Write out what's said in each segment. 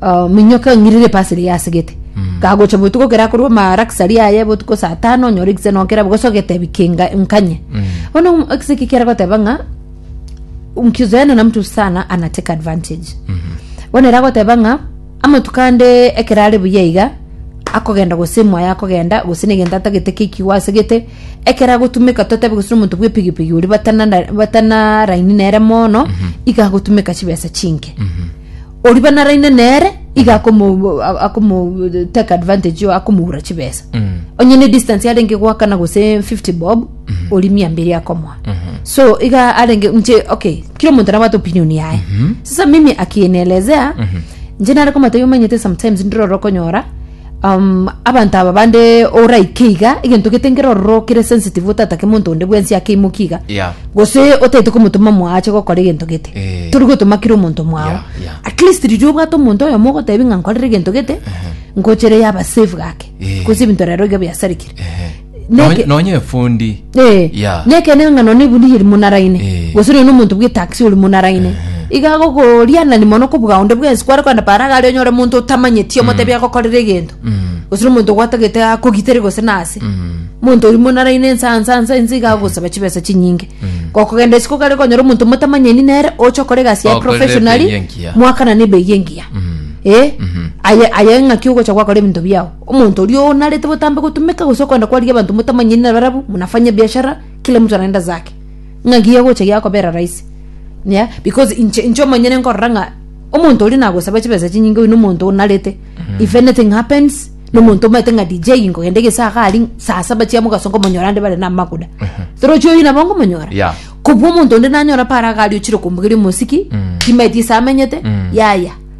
ah, minyoka eng'irire epa asere yasegete kagocha botuko kera korwa marakisari aye botuko saa tano onyore ekise nokera bogosa ogetebi kinga nkanye bono ekise eki kera goteba ng'a mkizoeana na mtu sana ana take advantage bono era goteba ng'a amatuko ande ekero are buya iga akogenda gose emoyo akogenda gose negento atagete kekigo asegete ekero agotumeka totebe gose nomonto bwa epigipigi oria batana batana raini nere mono iga agotumeka chibesa chinke oria banaraine nere iga akomo akomo take advantage yo akomoura chibesa Mm. onye ne distance arenge gwakana gose 50 bob ori mia mbiri akomoa so iga arenge nche okay kila omonto nabwate opinion yaye sasa mimi akinielezea nche nare komotebi omanyete sometimes ndire orokonyora Um, abanto aba bande oraike iga egento gete nkero ororo kere sensitive otatake monto onde bwensi akeimoki iga Yeah. gose otaete komotoma mwao ache gokora egento gete Eh. tori gotoma kire omonto mwao Yeah, yeah. at least riria obwate omonto oyomo ogotebi ng'a nkorere egento gete ngochere yaba safe gake Eh. gose ebinto rero iga biasarikire Ehe. Nonya- Neke- nonya efundi Eh, ya neke neng'ano nebuni eri monaraine Eh. gose rero nomonto bwetaxi ori monaraine iga gokorianani mono kobuga onde bwensi kware kogenda para iga aria onyore omonto otamanyeti omotebi agokorera egento Mm, gose na omonto gwatagete akogitere gose nase mm, monto ori monaraine nsa nsa nsa nsa iga agosaba chibesa chinyinge gokogenda isiko gare konyora omonto motamanyeni nere oche okore egasi ya Okorere ebei professionally engiya. mwakana na ebei engiya mm. eh Mhm. aye aye ng'aki ogocha gwakora ebinto biao Omonto oria oo narete botambe gotumeka gose okoenda kwarigia abanto motamanyeti nabarabwo, munafanye ebiashara, kila mtu anaenda zake. Ng'a giagocha giakobera rahisi. Yeah, because inche inche omonyene nkorora ng'a omonto oria nagosaba chibesa chinyinge oyo nomonto oo narete. If anything happens, nomonto omanyete ng'a DJ nkogenda egesaga aria, saa saba chia mogaso nkomonyora ande bare namaguda. Torochi oyio nabo nkomonyora. Yeah. Kobua omonto onde nanyora paro agari ochire komoigeria omosiki, timaeti ase amenyete, yaya.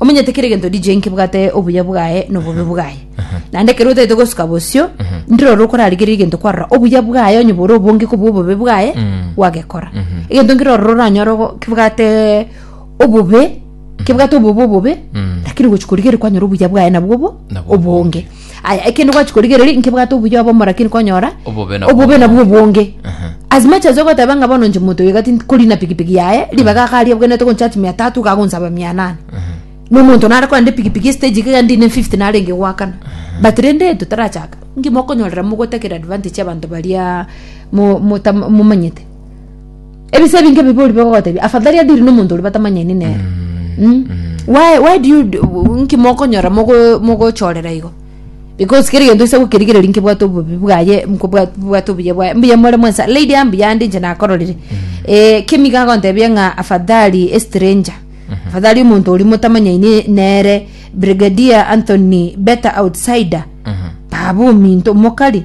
omanyete kera egento DJ nkebwate obuya bwaye na obobe bwaye naende ekero otaete gosuka bosio ndire ore okorarigereria egento kwarora obuya bwaye onye bore obonge kobua obobe bwaye gwagekora egento nkere ororo oranyore ogo- kebwate obobe kebwate obobe obobe lakini gochia korigereria kwanyora obuya bwaye nabwo obo Nabwo obonge aya ekende gwachi korigereria nkebwate obuya obomo lakini konyora Obobe nabwo. obobe nabwo obonge as much as ogoteba ng'a bono inche monto oigati nkori na pikipiki yaye ribaga iga ariabwenerete goncharge mia tatu iga agonsaba mia nane na omonto nare korende pikipiki estage iga ndine 50 narenge goakana but rende totarachaka ngima okonyorera mogotakera advantage abanto baria mo- mota- momanyete ebise ebinge bibe ori bigogotebia afadhali adiri na omonto oria batamanyani nere Mm. why, why do you do- nki mokonyora mogo- mogochorera igo because kere gento ase gokerigereria nkebwate obobi bwaye nkobwa- bwate obuya bwaye mbuya more mwensa lady aya mbuya ande inche nakororire Eh, kemi iga agontebia ng'a afadhali estranger afadhali omonto oria motamanyani nere brigadier anthony better outsider baba ominto mokari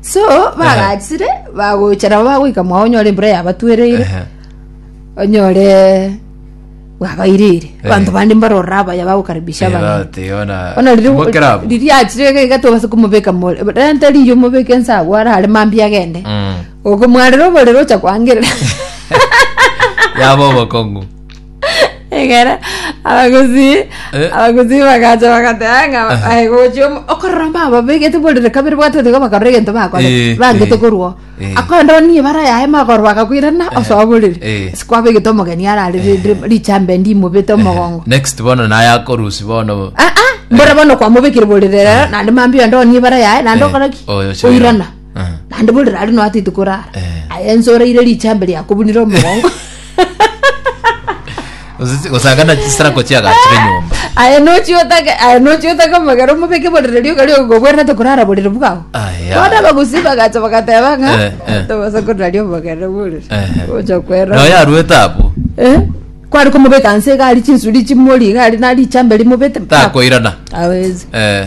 so bagachire bagocha nabo bagoika mwao onyore embura yabatwereire Ehe. onyore bwabairire Eh. abanto bande mbarora abaya bagokaribisha Era abana ati ona Ona riri- timo kerabu. riri achire gaiga tobasa kumobeka more rente riyo omobeke ensago ara are mambia agende Mm. okomwarera oborere ocha kwangerera Yaba obokongu. egere abagusii Eh. abagusii bagacha bagateba ng'a aye gochia omo- okorora mba babegete borere kabere bwatete iga bakarora egento bakore Eh, bangete eh, korwa eh. akonde oni ebara yaye magoro bakakwirana osoa borere eh. ase kwabegete omogeni arare rende richambe ndimobete omogongo next bono naye akorusi bono Ah, ah, mbora bono kwamobekire borere rero naende mambia onde oni ebara yaye naende Eh, okora ki oyo oirana Ah. naende bori rari noatiti korara Eh. aye ense oraire richambe riakobunire omogongo Osisi- osagana chisirako chiagachire nyomba aye nochiotake aye nochiotake omogero omobeke borere rioka rioka gobwerete korara borere bwao Aya. bona bagusi bagacha bagateba Eh, ng'a eh. tobasa korari omogero borere Ehe. ocha kwera nayo yarwete apo Eh? kwari komobeka nse gari chinsuri chimori gari nari chambe rimobete takoirana awezi Eh,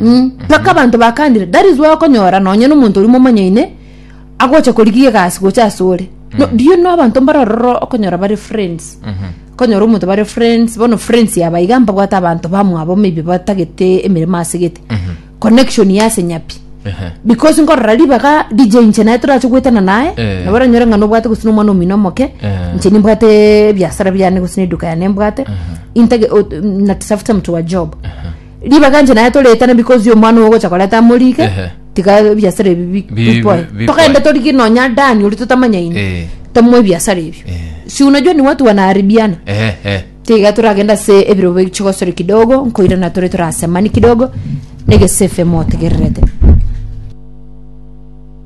Mm, mpaka abanto bakandire that is why okonyora nonye nomonto oria momanyaine agocha korigia egasi gocha ase ore no, do you know abanto mbare ororo okonyora bare friends konyora omonto bare friends bono friends yaba iga mbabwate abanto bamwabo maybe batagete emeremo ase gete connection ya ase nyapi Ehe. because nkorora ribaga dj inche naye torache goetana naye Eh. nabo oranyore ng'a nobwate gose nomwana omino omoke Eh. inche nimbwate ebiasara biane gose neduka yane mbwate intage o- na tafuta mtu wa job Ribaga inche naye toretane because omwana ogo ogocha koreta amorike Ehe. tiga ebiasara ebi bi- Bi- bipoe bi- bipoe. togende torike nonya dani ori totamanyaine Eh. tamoe ebiasara ebio Eh. si unajua ni watu wanaharibiana Eh, eh. tiga toragenda ase ebirobo chigosore kidogo nkoirana tore torasemani kidogo negesafe motegererete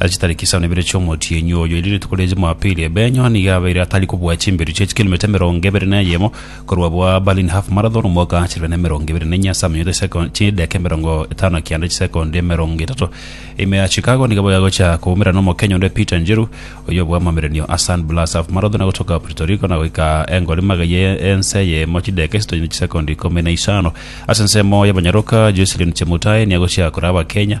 Ase chitariki isano na ibere chi'omotienyi oyo, erio rituko ria Jumapili, Ebenyo nigo abeire atari kobua chimberu chie chikilometa emerongo ebere na eyemo korwa bwa Berlin Half Marathon omwaka chilifu bibere na emerongo ebere na enye ase amanyato chisekondi chideka emerongo etano kianda chisekondi emerongo etato. Ime ya Chicago nigo bagocha koumera n'Omokenya onde Peter Njiru oyio obua amamerenio a San Blas Half Marathon agotoka Puerto Rico na goika engori magega ye ense eyemo chideka isatu na chisekondi ikomi na isano. Ase ensemo y'abanyaroka, Jocelyn Chemutai niagochia kore Abakenya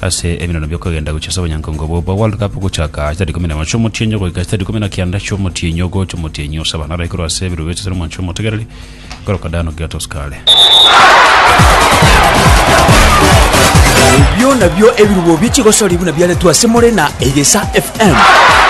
Ase ebirono bi'okogenda gochia ase obonyankongo obwo bwa World Cup ogochaka chisari ikomi na emo chi'omotienyi ogoika chisari ikomi na kianda chi'omotienyi ogocha omotienyi o saba naro aikorwa ase ebirobechi ase Romwancha Omotegereri korokwa Dano Giottos kare. Ebio nabio ebirubo bi'echigosoria buna biaretwe ase more na Egesa FM.